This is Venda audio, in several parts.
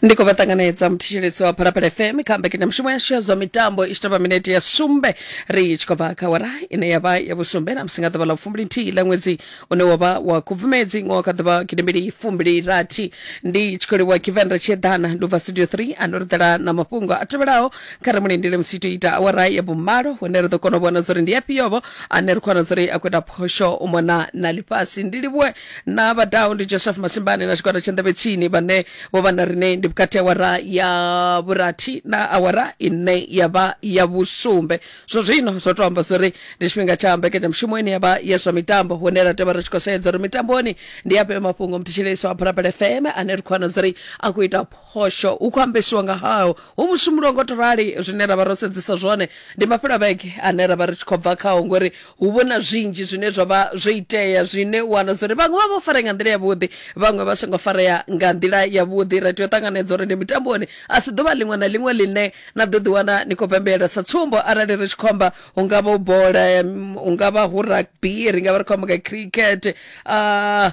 ndi khou vha ṱanganedza muthetshelesi wa phalaphala fm kha mbekanyamushumo yashu ya zwa mitambo i tshitova minete ya sumbe ri tshi khou bva kha wara ine ya vha ya vhusumbe na musi nga ḓuvha ḽa fumbili nthihi ḽa ṅwedzi une wa vha wa khubvumedzi ṅwaha kha ḓuvha gidimbili fumbili rathi ndi tshi khou livhuwa kivhen ri tshi eḓana ndi u bva studio 3 a no ri ḓela na mafhungo a tevhelaho kha ri mulindele musi to ita awara ya vhumalo hune ri ḓo kona u vhona zwa uri ndi afhiyovho ane ri khou wana zwa uri a khou ita phosho u mona na ḽifhasi ndi livhuwe na vha daho ndi joseph masimbane na tshigwada tsha ndavhe tsini vhane vho vha na rine ndi vhukati awara ya vhurathi na awara ine ya vha ya vhusumbe zwo zwino zwo to amba zwori ndi tshifhinga tsha mbekanyamushumo ine ya vha ya zwa mitambo hune ra tevha ri tshi khou sedza uri mitamboni ndi afhe mafhungo mthetshelesi wa phalaphala fm ane ri khou wana zwori a khou ita hosho hu khou ambesiwa nga hao hu musumulongo to rali zwine ra vha ro sedzisa zwone ndi mafhelo vhege ane ra vha ri tshi khou bva khao ngori hu vho na zwinzhi zwine zwa vha zwo itea zwine u wana zwori vhaṅwe vha vho farea nga nḓila yavhuḓi vhaṅwe vha songo farea nga nḓila yavhuḓi ri tea u ṱanganedza uri ndi mitamboni a si ḓuvha ḽiṅwe na ḽiṅwe ḽine na ḓo ḓiwana ni khou pembelela sa tsumbo arali ri tshi khou amba hu nga vha bola hu nga vha hu rugby ri nga vha ri khou amba nga cricket uh,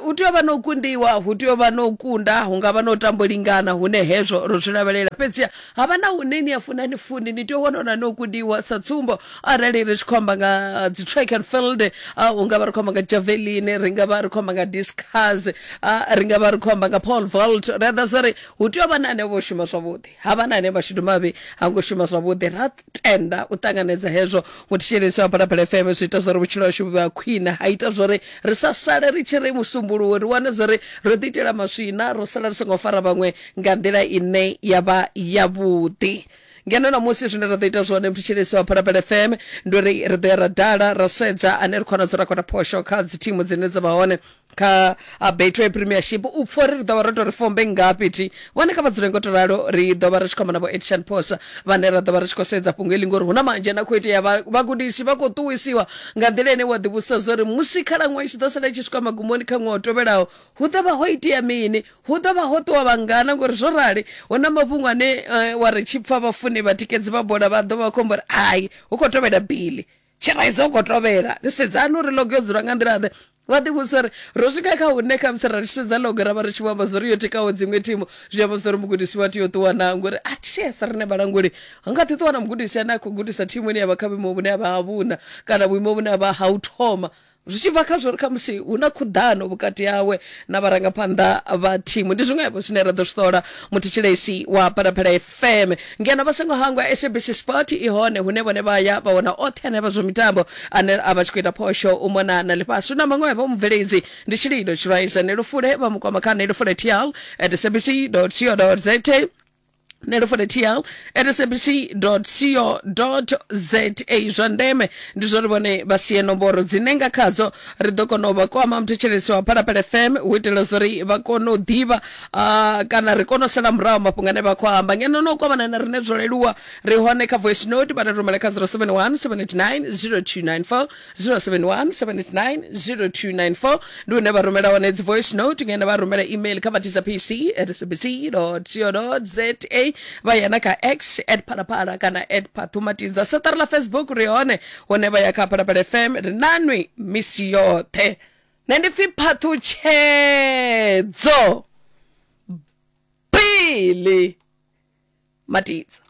hu tea u vha no kundiwa hu tea u vha no kunda hu nga vha no tambo lingana hune hezwo ro zwi lavhelela fhedziha ha vha na hune ni a funa ni funi ni tea u vhona uri no kundiwa sa tsumbo arali ri tshi khou amba nga uh, dzi track and field uh, hu nga vha ri khou amba nga javelin ri nga vha ri khou amba nga discus uh, ri nga vha ri khou amba nga paul volt ri aḓa zwa uri hu tea u vha na ane vho shuma zwavhuḓi ha vha na ane mashudu mavhi ha ngo shuma zwavhuḓi ra tenda u ṱanganedza hezwo muthetshelesi wa balabala fm zwi ita zwori vhutshilo hashu vha khwine ha ita zwori ri sa sale ri tshi ri musumbuluwo ri wane zwori ro ḓi itela maswina ro sala ri songo fara vhaṅwe nga nḓila ine ya vha yavhuḓi ngeno na musi zwine ra ḓo ita zwone mthetshelesi wa phalaphala fm ndi uri ri ḓo ya ra dala ra sedza ane ri khona dzula khona phosho kha dzi thimu dzine dza vha hone kha a betway premiership u pfha uri ri ḓo vha ro tou ri fombe ngafhi thi vhone kha vha dzule ngo to ralo ri ḓo vha ri tshi khou amba na vho edishan posa vhane ra ḓo vha ri tshi khou sedza fhungo eḽi ngori hu na manzhe na khou itea Vha- vhagudisi vha khou ṱuwisiwa nga nḓila ine wa ḓivhudzisa zwa uri musi khalaṅwaha i tshi ḓo sala i tshi swika magumoni kha ṅwaha u tevhelaho hu ḓo vha ho itea mini hu ḓo vha ho ṱuwa vhangana ngori zwo rali hu na mafhungo ane eh, wa ri tshi pfha vhafuni vhatikedzi vha bola vha ḓo vha khombo uri ai hu khou tovhela bili Tshiraidzo u khou tovhela ri sedzani uri logo yo dzula nga nḓila ḓe vha ḓivhudzisa uri ro swika kha hune khamusi ra tshi sedza logo ra vha ri tshi vho amba zwa uri yo tikaho dziṅwe thimu zwi amba zwa uri mugudisi wa tea u ṱuwa naa ngori a thithesa riṋe vhalanguli ha nga ḓi ṱuwa na mugudisi ane a khou gudisa thimu ine ya vha kha vhuimo vhune ha vha ha vhuna kana vhuimo vhune ha vha ha u thoma zwi tshi bva kha zwori khamusi hu na khuḓano vhukati hawe na vharangaphanḓa vha thimu ndi zwiṅwevho zwine ra ḓo zwi ṱola muthetshelesi wa phalaphala fm ngeno vha songo hangwa sabc sport i hone hune vhone vha ya vha wana oṱhe hanevha zwa mitambo ane a vha tshi khou ita phosho u mona na ḽifhasi na maṅwevho mubveledzi ndi tshililo tshiraiza nelufule vha mukwama kha nelufule tl at sabc co za nelo for the tl at sabc co za zwa ndeme ndi zwo ri vhone vha sie nomboro dzine nga khadzo ri ḓo kona u vha kwama muthetshelesi wa phalaphala fm u itela zwa uri vha kone u ḓivha ah, kana ri kone u sala murahu mafhungo ane vha khou amba ngeno no u kwamana na rine zwo leluwa ri hone kha voice note vha ri rumela kha 071 789 0294 071 789 0294 ndi une vha rumela hone dzi voice note ngene vha rumela email kha vhatisa pc at sabc co za vha yana kha x at phalaphala kana at phathumatiza saṱari ḽa facebook ri hone hone vha ya kha phalaphala fm ri nanwi misi yoṱhe nṋe ndi pfi phaṱhutshedzo bili matidza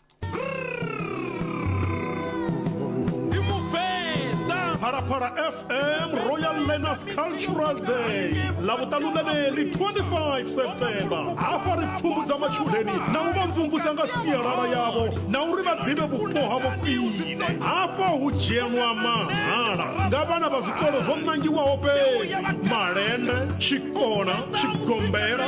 phalaphala fm royal learners cultural day lavutanu ḽeneḽi 25 september hafha ri pfumbudza matshudeni na u vha mvumvusa nga sialala yavho na uri vha ḓivhe vhupo havho khwine hafha hu dzhenwa mahala nga vhana vha zwikolo zwo nangiwaho fhedzi malende tshikona tshigombela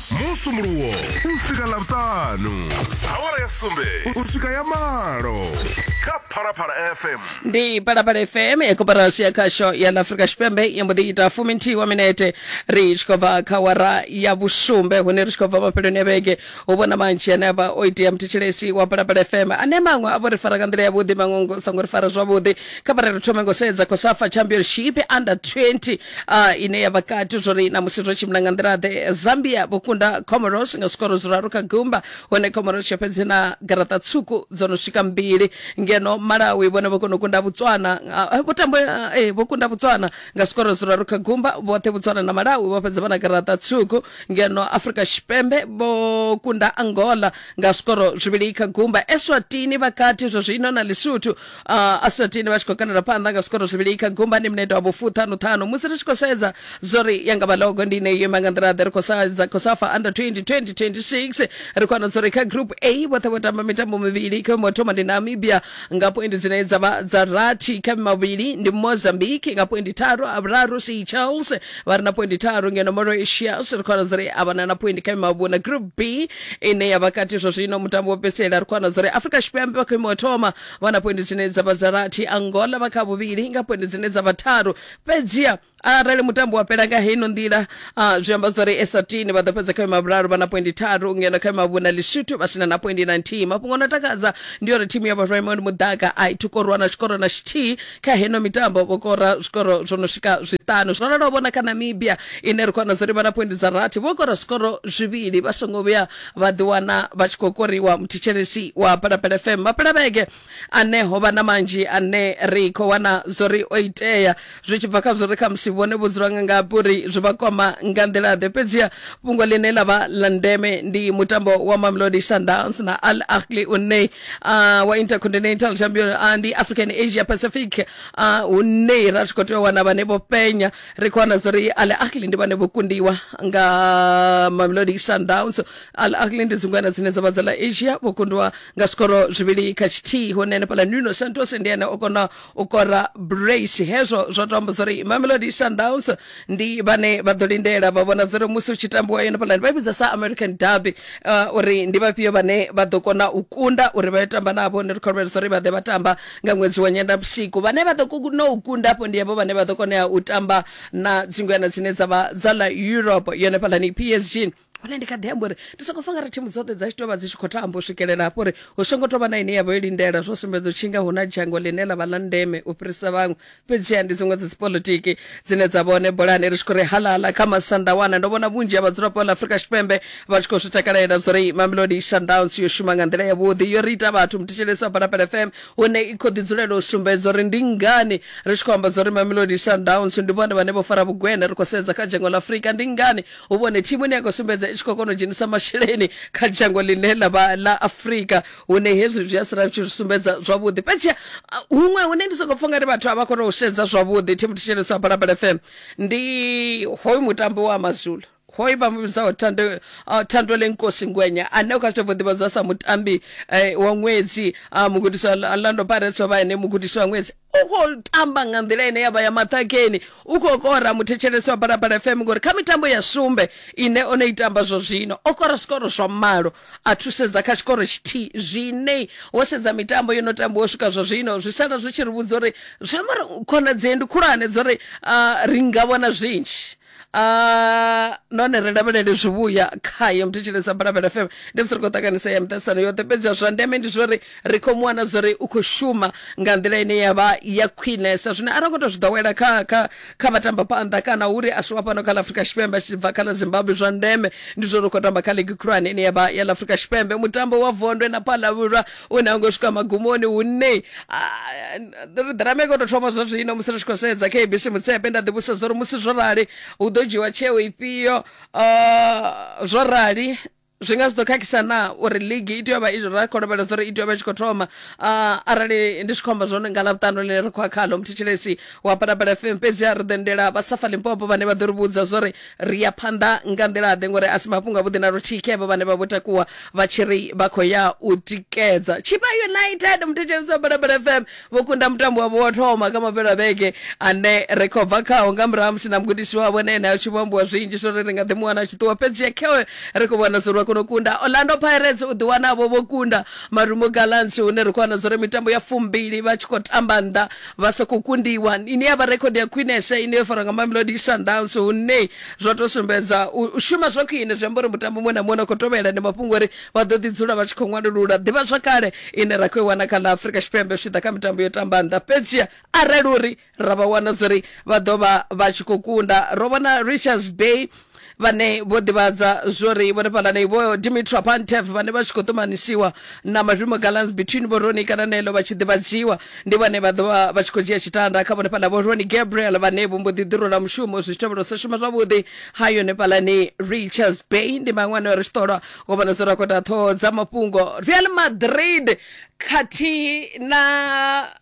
musumuluwo u swika ḽavhutanu awara ya sumbe u swika ya malo kha phalaphala fm ndi phalaphala fm ya koporasi ya khasho ya la afrika tshipembe ya mbo ḓi ita fuminthihi wa minete ri tshi khou bva kha wara ya vhusumbe hune ri tshi khou bva mafheloni a vhege hu vhona manzhi ane avha o itea muthetshelesi wa phalaphala fm ane maṅwe a vho ri fara nga nḓila yavhuḓi maṅwe ngo- songo ri fara zwavhuḓi kha vha ri ri thome ngo sedza cosafa championship under 20 uh, ine ya vha kati zwo ri na musi zwo tshimbila nga nḓila ḓe zambia vho kunda comoros nga zwikoro zwiraru kha gumba hone comoros yo fhedzi na garaṱa tswuku dzo no swika mbili ngeno malawi vhone vho kona u kunda botswana ah, vho tambo ah, eh, vho kunda botswana nga zwikoro zwiraru kha gumba vhoṱhe botswana na malawi vho fhedza vha na garaṱa tswuku ngeno afrika tshipembe vho kunda angola nga zwikoro zwivhili kha gumba eswatini vhakati zwa zwino na lesotho uh, aswatini vha tshi khou kandela phanḓa nga zwikoro zwivhili kha gumba ndi minete wa vhufuṱhanuṱhanu musi ri tshi khou sedza zwori yanga vhalogo ndi ine yo ima nga nḓila ḓe ri khou sedza cosafa under 20 2026 ri khou ana zwori kha group a vhoṱhe vho tamba mitambo mivhili kha vhuimo ha u thoma ndi namibia nga poindi dzine dza vha dza rathi kha mavhili ndi mozambique nga poindi tharu a vhuraru seychelles vha re na poindi tharu ngeno mauritius ri khou ana zwori a vhana na poindi kha vhuimo ha vhuṋa group b ine ya vha kati zwo zwino mutambo wo fhedzisela ri khou wana dzori afrika tshipembe vha khou ima u thoma vha na poindi dzine dza vha dza rathi angola vha kha vhuvhili nga poindi dzine dza vha tharu fhedziha arali mutambo wa fhela nga heino nḓila ah, zwi amba dzori esatini vha ḓo fhedza kha ima vhuraru vha na poindi tharu ngeno kha ima vhuna lesotho vha sina na poindi na nthihi mafhungo no takadza ndi uri thimu ya vha raymond mudaka a i thukorwa na tshikoro na tshithihi kha heno mitambo vho kora zwikoro zwo no swika zwiṱanu zwo ralo vhona kha namibia ine ri khou wana zwo livha na pointi dza rathi vho kora zwikoro zwivhili vha songo vhuya vha ḓiwana vha tshi khou koriwa muthetshelesi wa palapala fm mapela vhege ane ho vha na manzhi ane ri khou wana zwo ri o itea zwi tshi bva kha zwo ri kha musi vhone vho dzula nga ngafhi uri zwi vha kwama nga nḓila-ḓe fhedziha fhungo ḽine ḽa vha ḽa ndeme ndi mutambo wa mamelodi sundowns na al ahli une uh, wa intercontinental champion uh, ndi african asia pacific uh, hune ra tshi khou tea u wana vhane vho penya ri khou wana zwori al ahli ndi vhane vho kundiwa nga mamelodi sundowns al ahli ndi dzingwana dzine dza vha dza ḽa asia vho kundiwa nga skoro zwivhili kha tshithihi hone henefhaḽa nuno santos ndi ene o kona u kora brace hezwo zwo to amba zwori mamelodi sundowns ndi vhane vha ḓo lindela vha vhona zwori musi hu tshi tambiwa yone phalani vha i vhidza sa american derby uh, uri ndi vhafhio vhane vha ḓo kona u kunda uri vha yo tamba navho ndi ri khou lavhelesa uri vha ḓe vha tamba nga ṅwedzi wa nyendavhusiku vhane vha ḓo kona u kunda afho ndi havho vhane vha ḓo konea u tamba na dzingwana dzine dza vha dza la europe yone phalani psg hone ndi kha ḓi amba uri ndi songo fa nga ri thimu dzoṱhe dza tshi tou vha dzi tshi khou tamba u swikelela hafho uri hu songo tou vha na ine ya vha yo lindela zwo sumbedza u tshinga hu na dzhango ḽine ḽa vha ḽa ndeme u fhirisa vhaṅwe fhedziha ndi dziṅwe dza dzipolitiki dzine dza vhone bolani ri tshi khou ri halahala kha masandawana ndo vhona vhunzhi ha vhadzulapo ḽa afurika tshipembe vha tshi khou zwi takalela zwo ri mamelodi sundowns yo shuma nga nḓila yavhuḓi yo ri ita vhathu mutetshelesi wa balapela fm hune i khou ḓi dzulela u sumbedza uri ndi ngani ri tshi khou amba zwo ri mamelodi sundowns ndi vhone vhane vho fara vhugwena ri khou sedza kha dzhango ḽa afurika ndi ngani hu vhone thimu ine ya khou sumbedza i tshi khou kona u dzhenisa masheleni kha dzhango ḽine ḽa vha ḽa afurika hune hezwi zwi a sala tshi sumbedza zwavhuḓi fhedziha huṅwe hune ndi sokou pfha nga ri vhathu a vha kona u sedza zwavhuḓi thimu thetshelesa balabala fm ndi hoyu mutambo wa mazulu hoyu vha mu vhidzaho thando uh, thando lenkosi ngwenya ane u kha sithe vhuḓivhadza sa mutambi eh, wa ṅwedzi uh, mugudisi wa orlando pirates o vha ene mugudisi wa ṅwedzi u khou tamba nga nḓila ine yavha ya maṱakeni u khou kora muthetshelesi wa balabala fm ngori kha mitambo ya sumbe ine o no i tamba zwo zwino o kora zwikoro zwa malo a thusedza kha tshikoro tshithihi zwine wo sedza mitambo yo no tambiwa u swika zwa zwino zwi sala zwi tshi ri vhudza uri zwi amba uri khonadzeo ndi khulwane dza uri ah, ri nga vhona zwinzhi Ah, nahone ri lavhelele zwivhuya khaye muthu tshilesa balabela fm ndi musi ri khou ṱanganisa ya miṱaṱisano yoṱhe fhedzi zwa ndeme ndi zwori ri khou muwana zwori u khou shuma nga nḓila ine ya vha ya khwinesa zwino a ro ngo to zwi ḓowela kha kha kha vhatamba phanḓa kana uri a si wa fhano kha ḽa afurika tshipembe a tshi bva kha ḽa zimbabwe zwa ndeme ndi zwori u khou tamba kha ligi khulwane ine ya vha ya ḽa afurika tshipembe mutambo wa vondwe na palavhulwa u na ngo swika magumoni hune ḓirame ko tou thoma zwa zwino musi ri tshi khou sedza kha ibisi mutsepe nda ḓivhusa zwa uri musi zwo rali hu ḓo dzhiwa tsheo ifhio uh, zwo rali zwi nga si ḓo khakhisa na uri ligi i tea u vha ra khou lavhelela zwa uri i tea u vha i tshi khou thoma ah, arali ndi tshi khou amba zwone nga ḽavhuṱanu ḽine ri khou a khalo mthetshelesi wa parapara fm fhedzi a ri ḓendela vha safa limpopo vhane vha ḓo ri vhudza zwa uri ri ya phanḓa nga nḓila-ḓe ngori a si mafhungo avhuḓi na luthihi kha vhane vha vho takuwa vha tshi ri vha khou ya u tikedza chipa united muthetshelesi wa balabala fm vho kunda mutambo wavho wa thoma kha mafhelo a vhege ane ri khou bva khawo nga murahu musi na mugudisi wavho na ene a tshi vho ambiwa zwinzhi zwo ri ri nga ḓi mu wana a tshi ṱuwa fhedzi ya khewe ri khou vhona zwo ri vha kona u kunda orlando pirates u ḓiwanavho vho kunda marumo gallants hune ri khou wana zwo ri mitambo ya fumbili vha tshi khou tamba nnḓa vha sa khou kundiwa ine ya vha rekhodo ya khwinesa ine yo farwa nga mamelodi sundowns hune zwa tou sumbedza u u shuma zwa khwine zwi amba uri mutambo muṅwe na muṅwe na khou tovhela ndi mafhungo uri vha ḓo ḓi dzula vha tshi khou ṅwalulula ḓivha zwa kale ine ra khou i wana kha ḽa afurika tshipembe zwi tshi ḓa kha mitambo yo tamba nnḓa fhedzi arali uri ra vha wana zwa uri vha ḓo vha vha tshi khou kunda ro vhona richards bay vhane vho ḓivhadza zwori vhuholefhalani vho dimitra pantev vhane vha tshi khou ṱumanisiwa na mazwimo galans between vho roni kana nelo vha tshi ḓivhadziwa ndi vhane vha ḓovha vha tshi khou dzhia tshitanda kha vhuholefhala vho roni gabriel vhane vho mbo ḓi ḓirula mushumo zwi tshi tevhela u sa shuma zwavhuḓi ha yonefhalani richards bay ndi maṅwe ane ri tshi ṱolwa wo vhona zwo rakota ṱhoho dza mafhungo real madrid khathihi na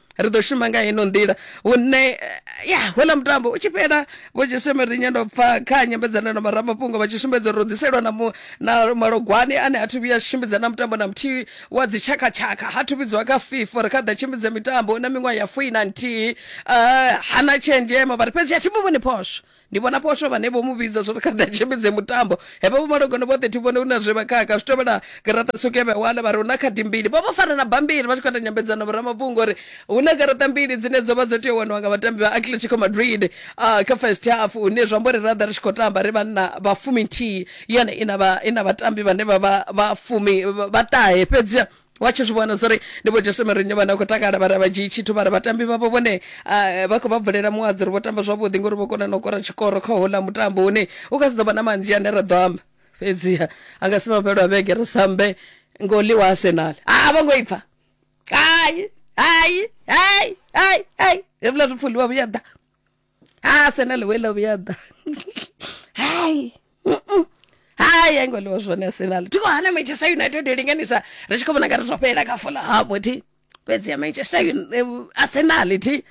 ri ḓo shuma nga ino nḓila hune eh, ya houḽa mutambo u tshi fhela vho jese marinya ndo pfa kha nyambedzano na maramafhungo vha tshi sumbedza uri ro ḓiselwa na mu- na malogwane ane a thuvhiya tshimbidza na mutambo na muthihi wa dzitshakhatshakha ha thuvhidziwa kha fifa uri kha ḓa tshimbidze mitambo na miṅwaha ya fui na nthihi um hana tshenzhemo vha ri fhedzi a thi mu vhoni phosho Ndi vhona posho vhane vho mu vhidza zwo ri kha ḓa tshimbidze mutambo hevha vho malogano vhoṱhe thi vhone hu na zwe vha khakha zwi tevhela garaṱa tswuku ya vhahwala vha ri hu na khadi mbili vho vho farana bambiri vha tshi khou ita nyambedzano vhoramafhungo uri hu na garaṱa mbili dzine dzo vha dzo tea u waniwa nga vhatambi vha atletico madrid uh, kha first half hune zwi amba uri ra ḓa ri tshi khou tamba ri vhanna vha fumi nthihi yone i na vha- i na vhatambi vhane vha vha vha fumi vha ṱahe fhedzi wa tshi zwi vhona zwo ri ndi vho jose marinyo vhana vha khou takala vhara vha dzhii tshithu vhara vhatambi vhavho vhone ah, vha khou vha vulela muadzi uri vho tamba zwavhuḓi ngori vho kona na u kora tshikoro kha houḽa mutambo une u nga si ḓo vha na manzhi ane ra ḓo amba fhedziha a nga si mafhelo a vhege ri sambe ngo ḽiwa arsenal a vho ngo i pfa hai hai hai hai hai hevhuḽa zwipfuli wa vhuya ḓa ha sena ḽiwe ḽa vhuya ḓa hai hai aingo ḽiwa zwone sena ḽi thikho hana manchester united yo linganisa ri tshi khou vhona nga ri zwo fhelela kha fola hafho thi fhedzi ya manchester eh, arsenal thi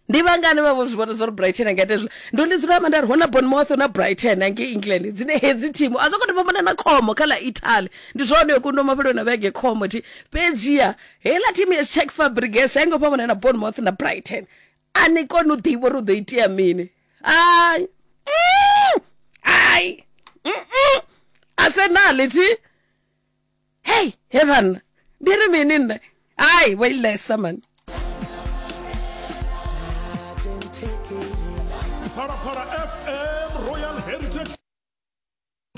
ndi vhangani vha vho zwi vhona zwa uri brighton anga ite zwi ndo ḽi dzula amba nda ri hu na bournemouth hu na brighton angei england dzine hedzi thimu a zwo khou tou na khombo kha ḽa italy ndi zwone yo kundiwa mafheloni a vhege khombo thi fhedziha heiḽa thimu ya check fabrigas a i ngo fhambana na bournemouth na brighton a ni koni u ḓivha uri u ḓo itea mini ai mm, ai a se na liti hei he vhanna ndi ri mini nṋe ai vho ilesa mani Phalaphala FM Royal Heritage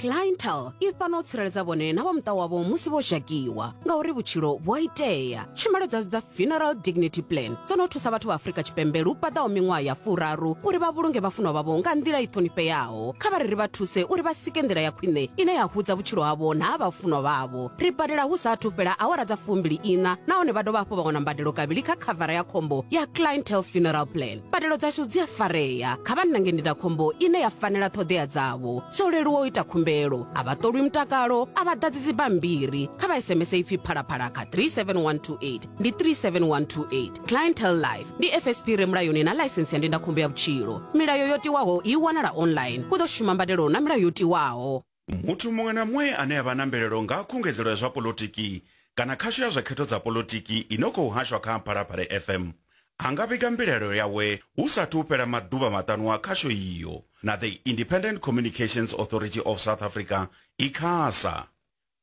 clientel i fana u tsireledza vhone na vha muṱa wavho musi vho zhakiwa ngauri vhutshilo vhu a itea tshumelo dza dza funeral dignity plan dzo no thusa vhathu vha afrika tshipembe lu paḓaho miṅwaha ya furaru uri vha vhulunge vhafunwa vhavho nga nḓila i ṱhonifheaho kha vha ri ri vha thuse uri vha sike nḓila ya khwine ine ya hudza vhutshilo havho na ha vhafunwa vhavho ri badela hu sa athu fhela awara dza fumbili ina nahone vha dovha hafhu vha wana mbadelo kavhili kha khavara ya khombo ya clientel funeral plan mbadelo dzashu dzi a farea kha vha nange ndindakhombo ine ya fanela ṱhoḓea dzavho zwo leluwa u ita khumbelo a vha ṱolwi mutakalo a vha ḓadzi dzibammbiri kha vha sms ipfi phalaphala kha 37128 ndi 37128 clientel life ndi fsp re mulayoni na ḽaisensi ya ndindakhombo ya vhutshilo milayo yo tiwaho i wanala online u ḓo shuma mbadelo na milayo yo tiwaho Muthu muṅwe na muṅwe ane a vha na mbilelo nga ha khungedzelo ya zwa poḽotiki kana khasho ya zwa khetho dza poḽotiki i no khou hashwa kha Mphalapale FM a nga vhiga mbilelo yawe hu sa athu u fhela maḓuvha maṱanu a khasho iyo na The Independent Communications Authority of South Africa, ICASA.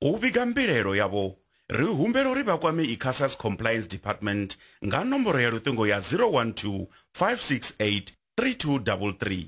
U vhiga mbilelo yavho, ri humbela uri vha kwame ICASA's Compliance Department nga nomboro ya luṱingo ya 012 568 3233.